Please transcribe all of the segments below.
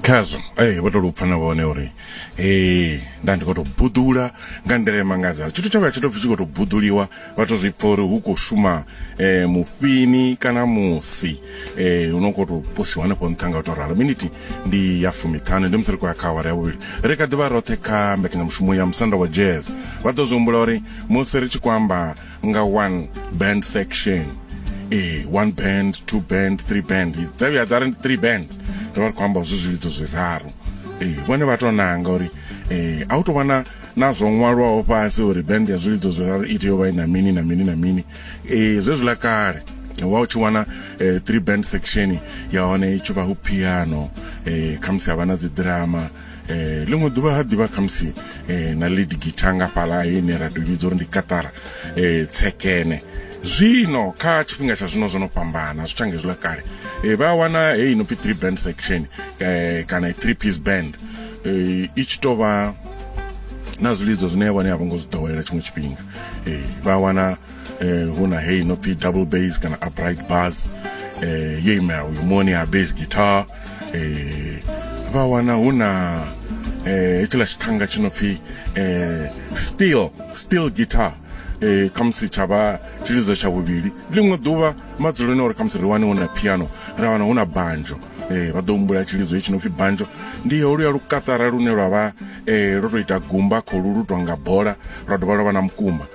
khazwo ee vho to lupfa na vhone uri ee nda ndi khou tou buḓula nga nḓila emangadzaho tshithu tsha vha tsha tou pfi tshi khou tou buḓuliwa vha to zwi pfa uri hu khou shuma um mufhini kana musi um hu no khou tou posiwa hanefho nṱha nga u tou ralo miniti ndi ya fumiṱhanu ndi musi ri khou ya kha awara ya vhuvhili ri kha ḓivha roṱhe kha mbekanyamushumo ya musanda wa jazz vha ḓo zwi humbula uri musi ri tshi khou amba nga one band section eh one band two band three band dza vhuya dza ri three band ri vha ri khou amba zwi zwilidzo zwiraru eh vhone vha tou nanga uri eh a u tou vhona na zwo ṅwalwaho fhasi uri band ya zwilidzo zwiraru i tea u vha i na mini na mini na mini eh zwezwiḽa kale wa u tshi wana eh, three band section ya hone i tshi vha hu piano eh khamusi ha vha na dziḓirama eh ḽiṅwe ḓuvha ha ḓivha khamusi eh na lead guitar nga fhala ine ra tou vhidza uri ndi katara eh tsekene zwino kha tshifhinga tsha zwino zwo no fhambana zwi tshange zwiḽa kale eh vha wana heyi no pfi three band section eh kana three piece band eh i tshi tovha na zwilidzo zwine ya vhone a vho ngo zwi ḓowela tshiṅwe tshifhinga eh vha wana eh, hu na heyi no pfi double bass kana upright bass eh, ye imela uyu moni ha bass guitar eh, vha wana hu na eh, hetshiḽa tshithanga tshi no pfi eh, steel steel guitar eh, khamusi tsha vha tshilidzo tsha vhuvhili ḽiṅwe ḓuvha madzuloni uri khamusi ri wane hu na piano ra wana hu na banjo eh, vha ḓo humbula tshilidzo hetshi no pfi banjo ndi holuya lukatara lune lwa vha eh, lwo tou ita gumba kholu lu tou nga bola lwa dovha lwa vha na mukumba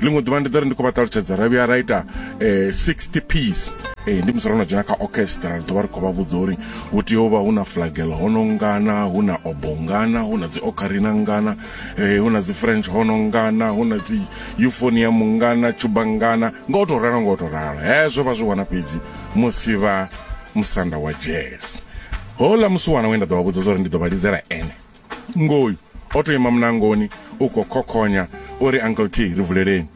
ḽiṅwe ḓuvha ndi ḓo ri ndi khou vha ṱalutshedza ra vhuya ra ita eh, 60 piece eh, ndi musi ro no dzhena kha orchestra ri ḓo vha ri khou vha vhudza uri hu tea u vha hu na flagel hono ngana hu na obo ngana hu na dzi ocarina ngana eh, hu na dzi french hono ngana hu na dzi euphonium ngana tshuba ngana nga u tou ralo nga u tou ralo hezwo vha zwi wana fhedzi musi vha musanda wa jazz houḽa musi wana we nda ḓo vha vhudza zwa uri ndi ḓo vha lidzela ene ngoyu o to ima munangoni u khou khokhonya o ri uncle t ri vuleleni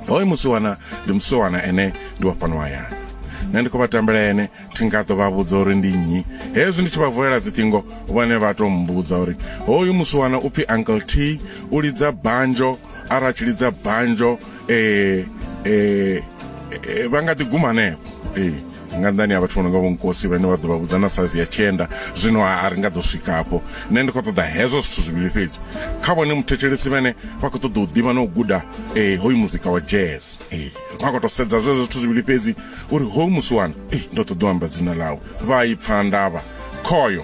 hoyo musiwana ndi musiwana ene ndi wa fhano hayani nṋe ndi khou vha tambela ene thi nga ḓo vha vhudza uri ndi nnyi hezwi ndi tshi vha vulela dziṱingo vhone vha tou mmbudza uri hoyu musiwana u pfhi uncle t u lidza banjo ara tshi lidza banjo eh eh vha nga ḓi guma hanefho eh nga nḓani ya vhathu vho no nga vhonkosi vhane vha ḓo vha vhudza na saizi ya tshenda zwino a ri nga ḓo swika hafho nṋe ndi khou ṱoḓa hezwo zwithu zwivhili fhedzi kha vhone muthetshelesi vhane vha khou ṱoḓa u ḓivha na u guda um hoyu muzika wa jazz um ri khou a khou tou sedza zwezwo zwithu zwivhili fhedzi uri hoyu musi wani um ndo ṱoḓa u amba dzina ḽawe vha i pfha ndavha khoyo